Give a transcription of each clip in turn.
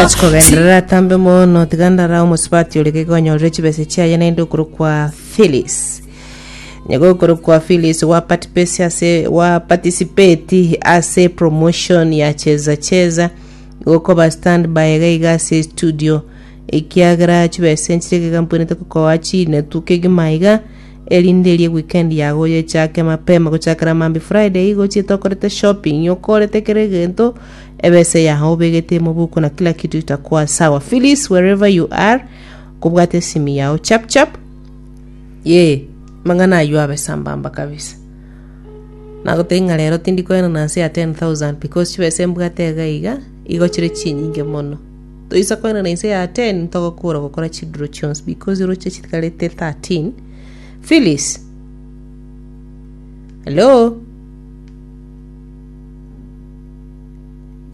Ochi kogenderera atambe mono tiga ndara omosubati oria gaiga onyorere chibesa chiaye naende okorokwa Phyllis nyego okorokwa Phyllis wa participate ase wa participate ase promotion ya cheza cheza gokoba standby gaiga ase studio ekiagera chibesa enchire gaiga mpwenerete kokoa chinetu kegima iga erinde erie weekend yago yechake mapema gochakera mambi Friday igo ochiete okorete shopping okorete kera egento Ebese yao obegetie mobuko na kila kitu itakuwa sawa. Phyllis, wherever you are, kobwate esimi yao chap chap. Ye, mang'ana aywo abe sambamba kabisa. Nagotei ng'a rero tindi koena na nse ya 10,000 because chibese mbwate iga iga, igo chire chinyinge mono. Toisa koena na inse ya 10 ntogokora gokora chiduro chionsi because roche chitigarete 13. Phyllis. Hello?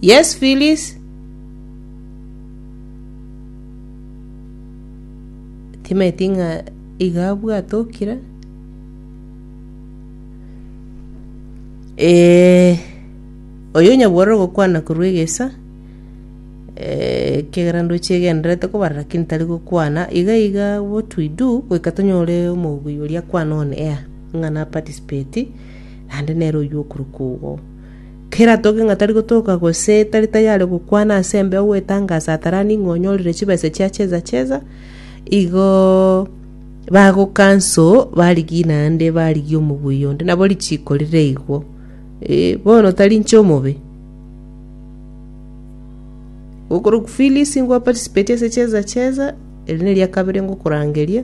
Yes Phyllis timanyeti ng'a iga abwate okira eh, oyo nyabwora ogokwana korwa egesa eh, ekiagera ndoche egenderete kobarera ki ntari gokwana iga iga what we do goika tonyore omoguyo oria akwana on air ng'a na participate naende nere oyio okorokwa ogo. Kera atoke ng'a tari gotoka gose tari tayare gokwana ase embeo gwetangasa ataranie ng'a onyorire chibesa chia cheza cheza, igo bagokanso barigie naende barigie omoguya onde, nabo richiko rire igwo. Eh, bono tari inche omobe. Okorokwa Phyllis ngwa participate ase cheza cheza, eri neria kabere ngokorangeria.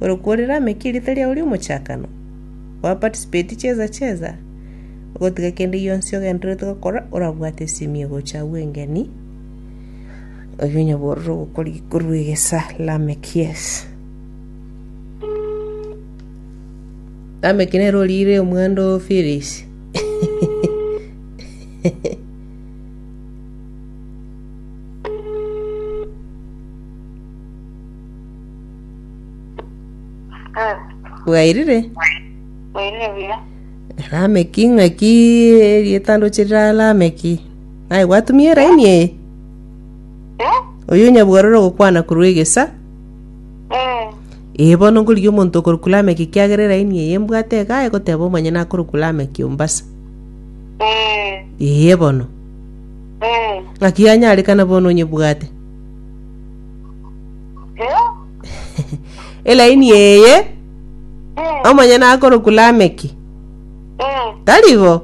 Ore kworera ame ki erieta riao ri'omochakano? Gwa participate cheza cheza, ogotiga kende gionsi ogendererete gokora orabwate esimi egocha agwo engeni, oyio onyaborere ogokori korwa egesa Lameck, yes. Lameck nere orire omwando o Phyllis. Eh, bwairire bwairire buya. lameki ng'aki rietandoche rira lameki naye gwatumia eraini eye Eh? oyo nyabwarore ogokwana korwa egesa Eh. ee bono ngorigia omonto okorokwa lameki kiagera eraini eye mbwate iga egoteba omanye nakorokwa lameki ombasa Eh. ee bono Eh. ng'aki yanyarekana bono onyebwate Eh, elaini eye eh, omonyene akorokwa lameki eh, tari igo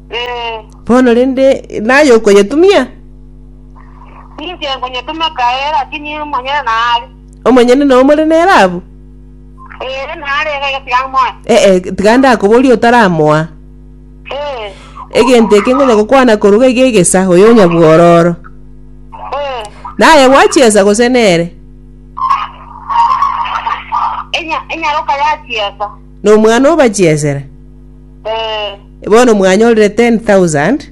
eh. bono rende naye okonyetumia Ninche nkunyetuma kae, lakini monyene naali. omonyene na omore nere abu Eh, naali ege gesiga moyo. ee tiga ndakoboria otaramoa Egento eke ngonya gokwana koruga iga egesa, oyo onyabwororo. Naye gwachiesa gose nere? Enya- enyaroka yachiesa Nomwana obachiesera. Eh, Bono mwanyorire 10,000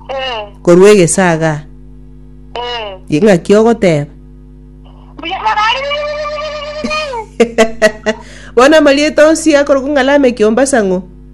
eh, korwa egesa iga. eh. Ye ng'aki ogoteba. Mbuya morari Bono amarieta onsi akorokwa ng'a Lameki ombasang'u.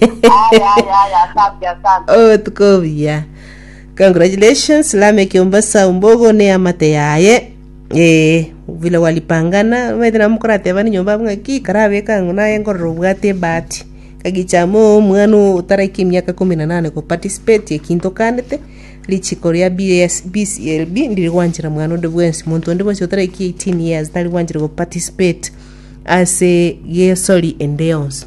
Aya, aya, aya, asante, asante. obotuko obuya congratulations lame kiombasa ombogo ne amate yaye ee vile walipangana maete namukorateba ni nyomba abunga ki karabeka ng'o naye ngorora obwate ebahati kagichama omwana otaraika emiaka kumi na nane ko participate ekinto kandete richiko ria BS BCLB ndiri gwanchera mwana onde bwensi monto onde bwensi otaraika 18 years tari gwanchera ko participate ase gesori ende yonsi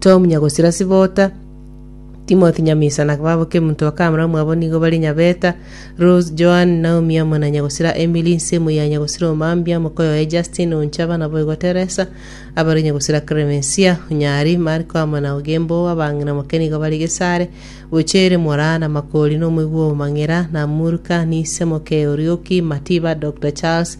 Tom nyagosira Sibota, Timothy nyamisa na babo kemonto wa kamera omwabo nigo bare nyabeta, Rose, Joan, Naomi amo na nyagosira Emily, nsemo ya nyagosira omambia, moka oyoye Justin, onchaba nabo igo Teresa, abare nyagosira Clemencia, onyari, Marco amo na Ogembo, abang'ina moke nigo bare Gesare, Bochere, Mora, na Makori, na omoigwa o mang'ira, na Murka, nise moke Orioki, Matiba, Doctor Charles,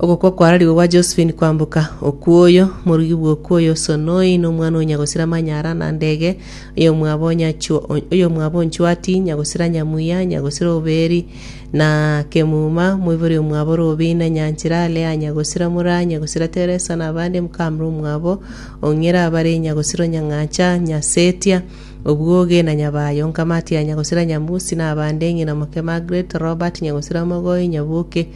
Ogokwa kwararigwe gwa Josephine kwamboka, okwoyo, morugi bw'okwoyo Sonoi nomwana o Nyagosira Manyara na ndege, oyomwabo Nyachwo- oyomwabo Nchwati, Nyagosira Nyamuya, Nyagosira Oberi, na Kemuma, moibori omwabo Robina, Nyanchera, Lea Nyagosira mura Nyagosira Teresa na abande mokamera omwabo o Ng'ira bare Nyagosira o Nyang'acha, Nyasetia, Obwoge na Nyabayo, Nkamatia, Nyagosira Nyamusi na abande, ng'ina moke Margaret, Robert, Nyagosira Mogoi, Nyaboke,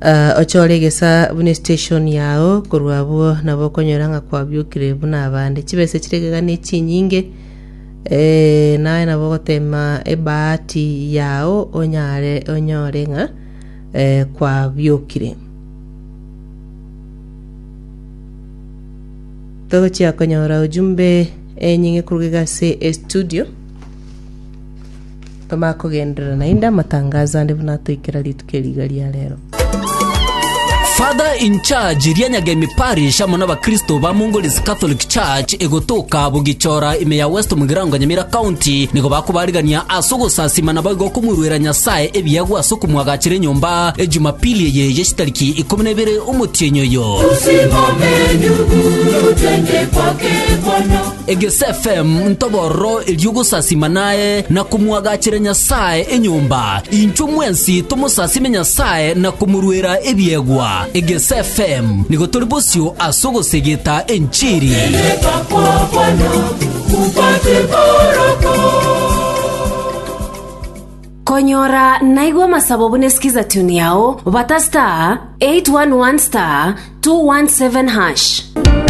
Ah, ochore egesaa buna estation yao, korwa abwo nabo okonyora ng'a kwabiokire buna abande. Chibesa chire gega ne chinyinge, eh, naye nabo ogotema ebahati yao onyare onyore ng'a eh, kwabiokire. Togochia konyora ujumbe enyinge koruga iga ase estudio. Toma kogenderera naende amatangazo ande buna atoikera rituko eri iga ria rero. Father in charge ria Nyagemi Parish amo nabakristo ba Mongolese Catholic Church egotoka Bugichora ime ya West Mugirango Nyamira County nigo bakobarigania ase ogosasima naboigo okomoruera Nyasae ebiegwa ase okomwagachera enyomba e Jumapili eye ye chitariki ikomi nebere omotienyi oyo. Egesfm ntobororo erio gosasima naye na komwagachera Nyasae enyomba, inchwe mwensi tomosasime Nyasae na komorwera ebiegwa. Egesfm nigo tori bosio ase ogosegeta enchiri. Konyora naigwa amasabo bune skiza tune yao bata star 811 star 217 hash.